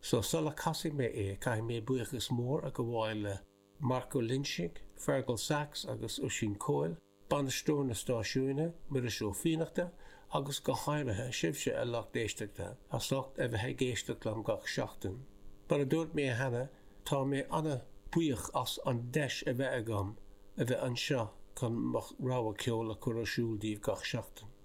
so sula casfaidh mé é caithfidh mé buíochas mór a ghabháil le Marc Ó Loingsigh, Fearghal Saxe agus Oisín Coyle, bainisteoir na stáisiúine, Muiris Ó Fiannachta agus go háirithe sibhse a lucht éisteachta as ucht a bheith ag éisteacht liom gach seachtain. Mar a dúirt mé cheana tá mé an-bhuíoch as an deis a bheith agam a bheith anseo chun mo rogha ceoil a chur ar siúl daoibh gach seachtain.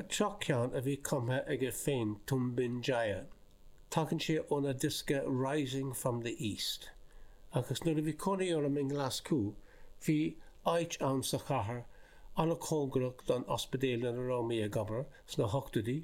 An tríú ceann a bhí cumtha aige féin, Tumbin Jaya. Tagann sé óna diosca Rising from the East. Agus nuair a bhí cónaí orm i nGlaschú, bhí áit ann sa chathair an-chóngarach don ospidéal ina raibh mé ag obair sna hochtóidí,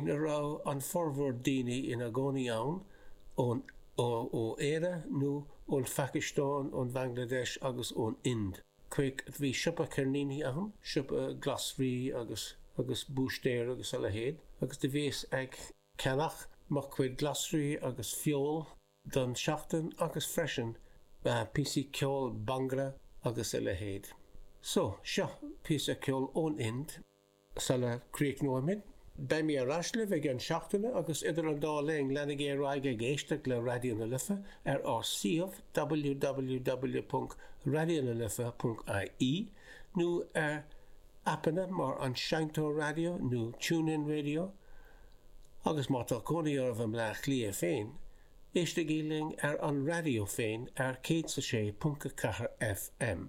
ina raibh an formhór daoine ina gcónaí ann ó Éire nó ón Phacastáin, ón Bangladesh agus ón Ind. Creag, Bhí siopa ceirníní ann, siopa glasraí agus agus búistéir agus a leithéid, agus do bhíos ag ceannach mo chuid glasraí agus feoil don tseachtain agus freisin píosaí ceoil bangra agus a leithéid. So, seo píosa ceoil ón Ind. Sula críochnóimid, beidh mé ar ais libh i gceann seachtaine agus idir an dá linn, leanaigí ar aghaidh ag éisteacht le Raidió na Life ar ár suíomh www.raidionalife.ie nó ar aipeanna mar An Seinnteoir Raidió nó TuneIn Radio agus má tá cónaí oraibh i mBleá Cliath féin, éistigí linn ar an raidió féin ar 106.4 FM.